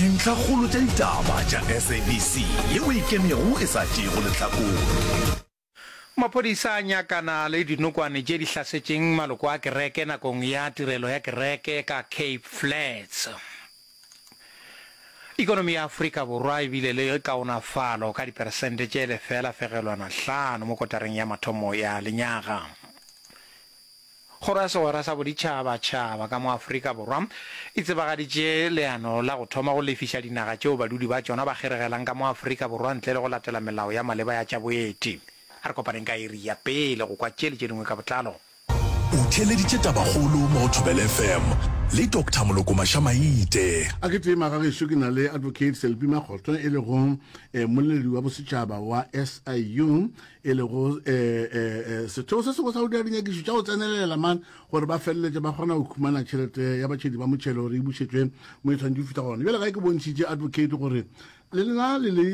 Dintlhakgolo tša ditaba tša SABC ye o e kemego e sa tšeego lehlakore. Maphodisa a nyakana le dinokwane tše di hlasetšeng maloko a kereke nakong ya tirelo ya kereke ka Cape Flats. Ekonomi ya Afrika Borwa e bile le kaonafalo ka diperesente tše lefela fegelwana hlano mo kotareng ya mathomo ya lenyaga. Kgoro ya Segwera sa Boditšhabatšhaba ka mo Afrika Borwa e tsebagaditše leano la go thoma go lefiša dinaga tšeo badudi ba tšona ba kgeregelang ka mo Afrika Borwa ntle le go latela melao ya maleba ya tša boeti. A re kopaneng ka iri ya pele go kwa tše le tše dingwe ka botlalo. O theeleditše tabakgolo mo go Thobela FM le Doctor Moloko Maša-Maite. A ke tee magagešo ke na le Advocate Selby Makgotho e lego eh, mmoleledi wa bosetšhaba wa SIU e lego setheo se sengwe sa go dira dinyakišo tša go tsenelela man gore ba feleletše ba kgona go khumana tšhelete ya batšhedi ba motšhelo gore e bušetšwe mo e tshwanetse fihla gona bjale ga e ke bontšhitše advocate gore le lena le le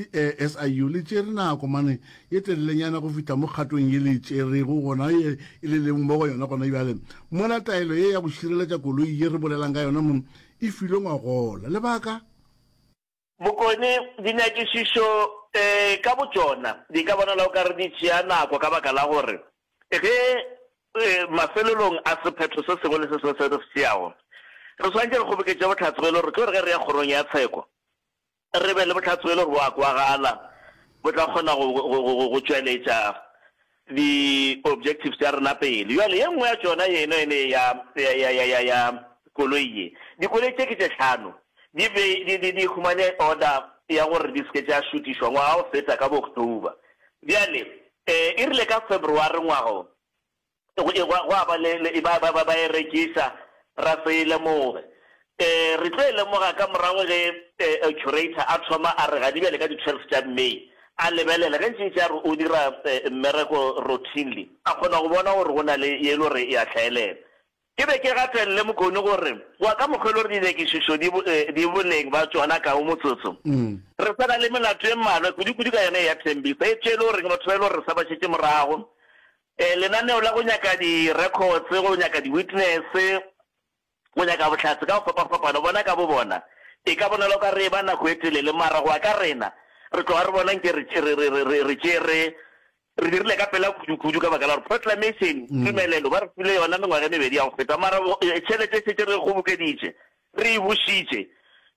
siu le tšere nako mane ye telelenyana go fihla mo kgatong ye le tšerego gona e le leng mo go yona gona bjale mola taelo ye ya go šireletša koloi ye re bolelang ka yona mo e filwe ngwagola lebaka Bokone, Dinyakišišo ka botšona di ka bonala o ka re di tšea nako ka baka la gore ge mafelelong a sephetho se sengwe le se sengwe se re se tšeago re swanetše re kgoboketše bohlatse bjo e le gore ke gore ge re ya Kgorong ya Tsheko re be le bohlatse bjo e le gore bo a kwagala bo tla kgona go tšweletša di objectives tša rena pele. Bjale ye nngwe ya tšona ye eno ene ya, ya, ya, ya, ya, ya koloi ye. Dikoloi tše ke tše hlano. Di be, di, di, di humane order ya gore di se ke tša šutišwa ngwaga o feta ka bo October. Bjale, e, e rile ka February ngwaga wo, gwa, gwa ba le, le, ba, ba, ba, ba e rekisa, ra se e lemoge. Re tlo e lemoga ka morago ge curator a thoma a re ga di bjale ka di 12 tša May, a lebelele ge ntšintši a re o dira mmereko routinely, a kgona go bona gore go na le ye e le gore e a hlaelela. Ke be ke gatelele Mokone gore wa ka mokgwa e le gore dinyakišišo di boleng ba tšona ka go motsotso, re sa na le melato e mmalwa kudu-kudu ka yona e ya Thembisa, etšwe e le goreng batho ba e le gore re sa ba šetše morago, lenaneo la go nyaka di records, go nyaka di witness, go nyaka bohlatse ka go fapafapano bona ka bobona. E ka bonala o ka re e ba nako e telele, mara go ya ka rena, re tloga re bona nke re, re, re, re, re, re tšere, re dirile ka pela kudukudu ka baka la gore proclamation, tumelelo, ba re file yona mengwaga e mebedi ya go feta, mara tšhelete e šetše re e kgobokeditše, re e bušitše.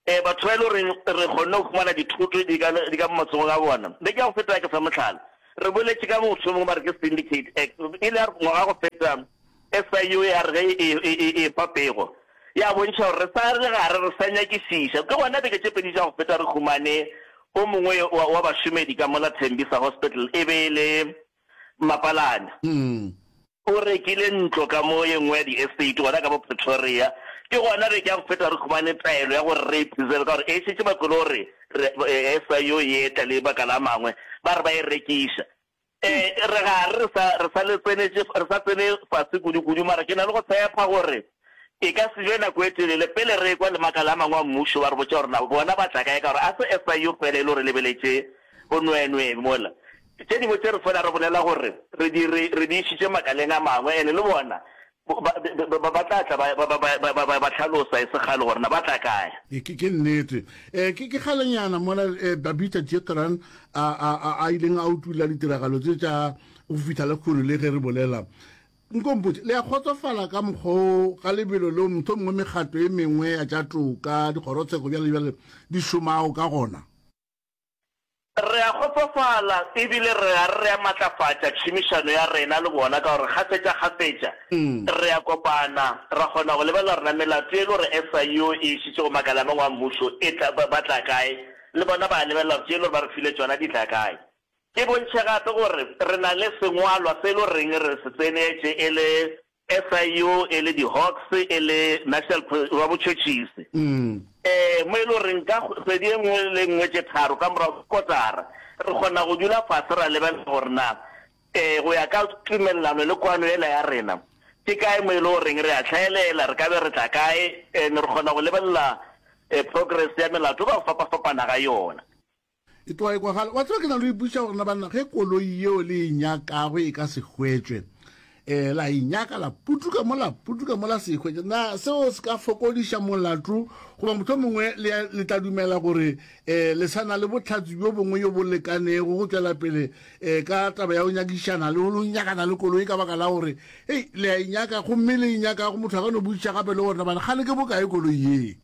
E, batho ba e le goreng re kgonne go fumana dithoto di ka, di ka mo matsogong a bona. Beke ya go feta ke sa mohlala, re boletše ka motho yo mongwe ba re ke Syndicate Act, e le ya ngwaga go feta, SIU ya re ge e epa pego, ya bontšha gore re sa le gare, re sa nyakišiša. Ke gona beke tše pedi tša go feta re humane o mongwe wa bašomedi ka mola Tembisa Hospital, e be e le Mapalane. O rekile ntlo ka mo ye nngwe ya di-estate gona ka bo Pretoria. Ke gona beke ya go feta re humane taelo ya gore re e preserve ka gore e šetše ba kwele gore SIU e etla le makala a mangwe, ba re ba e rekiša. Ee, re gare re sa, re sa le tsenetše, re sa tsene fase kudu-kudu, mara ke na le go tshepa gore e ka se be nako e telele pele re ekwa le makala a mangwe a Mmušo ba re botša gore na bona ba tla kae, ka gore ga se SIU fela e le go re lebeletše bonweenwee mola. Tše dingwe tše re fela re bolela gore re di, re, re di išitše makaleng a mangwe, and le bona Ba tla tla ba ba hlalosa e se kgale gore na ba tla kae. Ke nnete. Ke kgalenyana mola Babita Jethran a ileng a utulla ditiragalo tše tša go fihla lehono le ge re bolela. Nko mpotše, le a kgotsofala ka mokgwa o ga lebelo leo mohlomongwe mekgatlo e mengwe ya tša toka, dikgorotsheko bjale bjale di šomago ka gona? Re a kgotsofala e bile re a re a matlafatša tšhomišano ya rena le bona ka gore kgafetšakgafetša re a kopana ra kgona go lebelela gore na melato ye e le gore SIU e e šetše go makala a mangwe a mmušo e tla ba tla kae, le bona ba a lebelela gore tše e le gore ba re file tšona di tla kae. Ke bontšhe gape gore re na le sengwalwa se e le goreng re se tsenetše e le SIU e le di-Hawks e le National Pre wa Botšhotšhisi, ee, mo e le goreng ka kgwedi e nngwe le e nngwe tše tharo ka morago ga kotara re kgona go dula fase ra lebelela gore na, ee, go ya ka tumelelano le kwano yela ya rena, ke kae mo e le goreng re a hlaelela, re ka be re tla kae, and re kgona go lebelela progress ya melato ka go fapafapana ga yona. E tloga e kwagala. Wa tseba ke na le ipotšiša gore na banna ge koloi yeo le e nyakago e ka se hwetšwe um la e nyaka la putuka mo la putuka mo la se e hwetše na seo se ka fokodiša molato goba motho mongwe le tla dumela gore um le sa na le botlhatsi bjo bongwe yo bo lekanego go tšwela pele um ka taba ya go nyakišana le go nyakana le koloi ka baka la gore ei le a e nyaka gomme le e nyakago motho a ka no botšiša gape le gore nabana kgale ke bokae koloi yee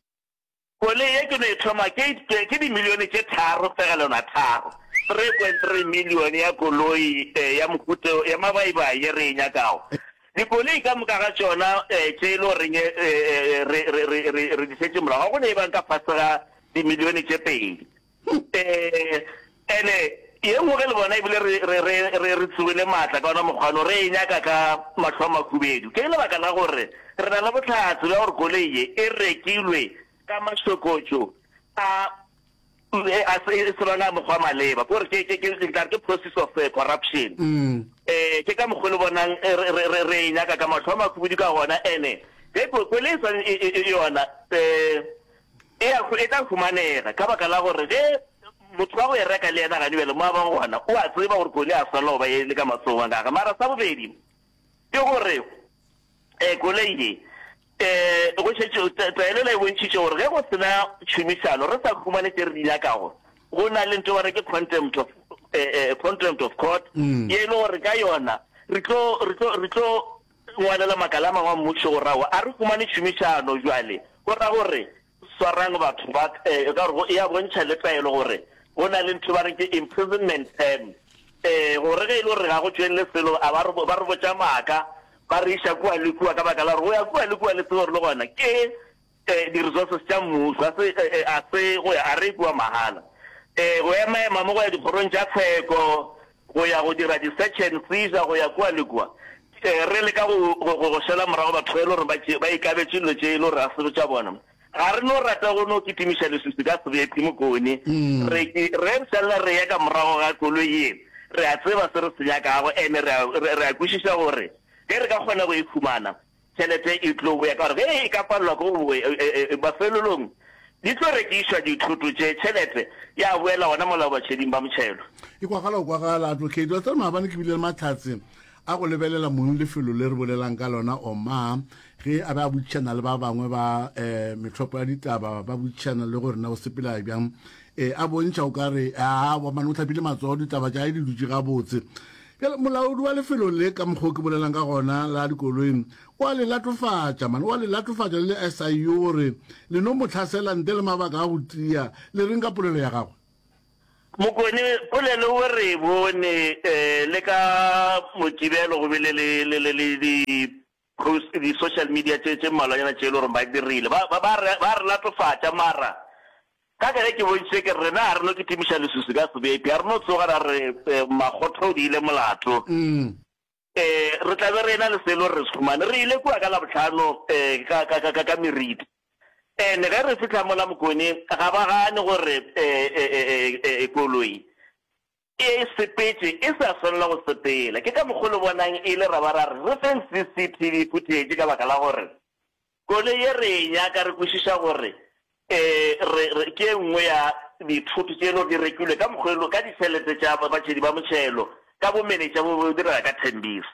Koloi ye ke no e thoma ke itpye ke dimilione tše tharo fegelelo a tharo, 3.3 milione, ya koloi ya mohuta ya mabaibai ye re e nyakago. Dikoloi ka moka ga tšona tše e le goreng re di šetše morago ga go ne e bang ka fase ga dimilione tše pedi. Ee, ene ye nngwe ge le bona ebile re, re, re, re, re tsogile maatla ka ona mokgwa no, re e nyaka ka mahlo a makhubedu. Ke lebaka la gore re na le bohlatse bja gore koloi ye e rekilwe ka mašokotšo a, a se, e se lona a mokgwa maleba, ke gore ke, ke, ke, nka re ke process of eh, corruption. Ee, ke ka mokgwa le bonang re, re, re, re e nyaka ka mahlo a makhubedu ka gona. Ene ge ko, koloi e swane e, e, e yona, eh, E a, e tla humanega, ka baka la gore ge motho wa go e reka le yena gane bjale mo a bang gona, o a tseba gore koloi a swanela go ba e le ka matsogo a gage. Mara sa bobedi ke gore um koloi ye um go šetše taelela e bontšhitše gore ge go sena tšhomišano re sa humane tše re di nyakago, go na le nto ba re ke contempt of um contempt of court ye e le gore ka yona re tlo re tlo re tlo Ngwalela makala a mangwe a Mmušo o ra go a re humane tšhomišano. Bjale, go ra go re, Swarang batho ba, e ka gore go e a bontšha le taelo gore go na le ntho ba reng ke imprisonment term, e, gore ge e le gore ga go tšwelele selo, a ba re, ba re botša maaka, ba re iša kua le kua ka baka la gore go ya kua le kua le tsebe gore le gona ke Di resources tša mmušo a se a se go ya a re kua mahala. Go ema ema mo go ya dikgorong tša tsheko, go ya go dira di search and seizure go ya kua le kua. Re le ka go go go šela morago batho ba e le gore ba tše ba ikabetše dilo tše e le gore a se tša bona. Ga re no rata go no kitimiša leswiswi ka sebephi mokone. Re ke re šalla re ya ka morago ga koloi ye re a tseba se re se nyakago ene re a re a kwešiša gore ge re ka kgona go e fumana Tšhelete e tlo boya ka gore ge e ka palelwa ke go boya, mafelelong di tlo rekišwa dithoto tše, tšhelete ya boela gona mola batšheding ba motšhelo. E kwagala go kwagala, Advocate. Wa tseba maabane ke bile le mahlatse a go lebelela mong lefelo le re bolelang ka lona, Omar, ge a be a botšišana le ba bangwe ba um methopo ya ditaba, ba botšišana le gore na o sepela bjang, um a bontšha o ka re, aa, wa mane o hlapile matsogo, ditaba tša hae di dutše gabotse. Bjale, molaodi wa lefelo le, ka mokgwa o ke bolelang ka gona, la dikoloi, o a le latofatša, man, o a le latofatša le le SIU, gore le no mo tlhasela ntle le mabaka a go tia. Le reng ka polelo ya gagwe? Mokone, polelo o re e bone, ee, le ka Mokibelo go bile le, le, le, le di, Those di social media tše tše mmalwanyana tše e le gore ba dirile ba ba ba re ba re latofatša mara ka ka ge ke bontšitše ke rena ga re no kitimiša lesusi ka sebepi ga re no tsoga ra re makgotho o di ile molato um re tla be re ena le se e le gore re se humane re ile kua ka labotlhano um ka ka ka ka meriti ene ge re fitlha mola mokone ga ba gane gore um koloi E sepetše e sa swanela go sepela. Ke ka mokgo le bonang e le ra ba ra re re feng CCTV footage ka baka la gore koloi ye re e nyaka re kwešiša gore e re re ke e nngwe ya dithoto tše e lego di rekilwe ka mokgwa e lego ka ditšhelete tša batšhedi ba motšhelo ka bomenetša bo bo direga ka Tembisa.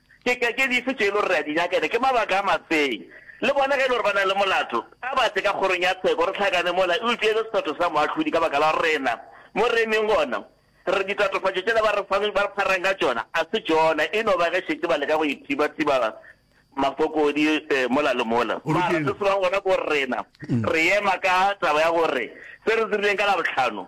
Ke ka ke dife tše e le gore re a di nyaka, ene ke mabaka a mafe'ng? Le bona ge e le gore ba na le molato, a ba tle ka kgorong ya tsheko, re hlakane mola, eupša e le sephetho sa moahlodi ka baka la rena. Mo re emeng gona, re re, Ditatofatšo tšela ba re fang, ba re pharang ka tšona, a se tšona, e no ba ge šetše ba leka go ithibathiba mafokodi mola le mola. Mara se sebang gona ke gore rena re ema ka taba ya gore se re dirileng ka Labohlano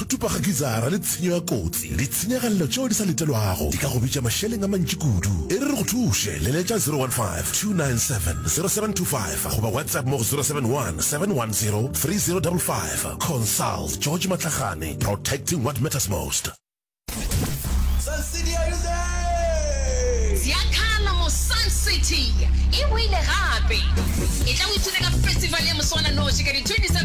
Tutupa ga gizara le tshenyo ya kotsi. Ditshenyagalelo tšeo di sa letelwago di ka go bitša mašeleng a mantši kudu. E re re go thuše, leletša 015-297-0725 goba WhatsApp mo go 071-710-3055. Consult George Matlagane, protecting what matters most. Sun City are you there? Ziakhala mo Sun City e boile gape. Etla o ithute ka festival ya moswananoši ka di 27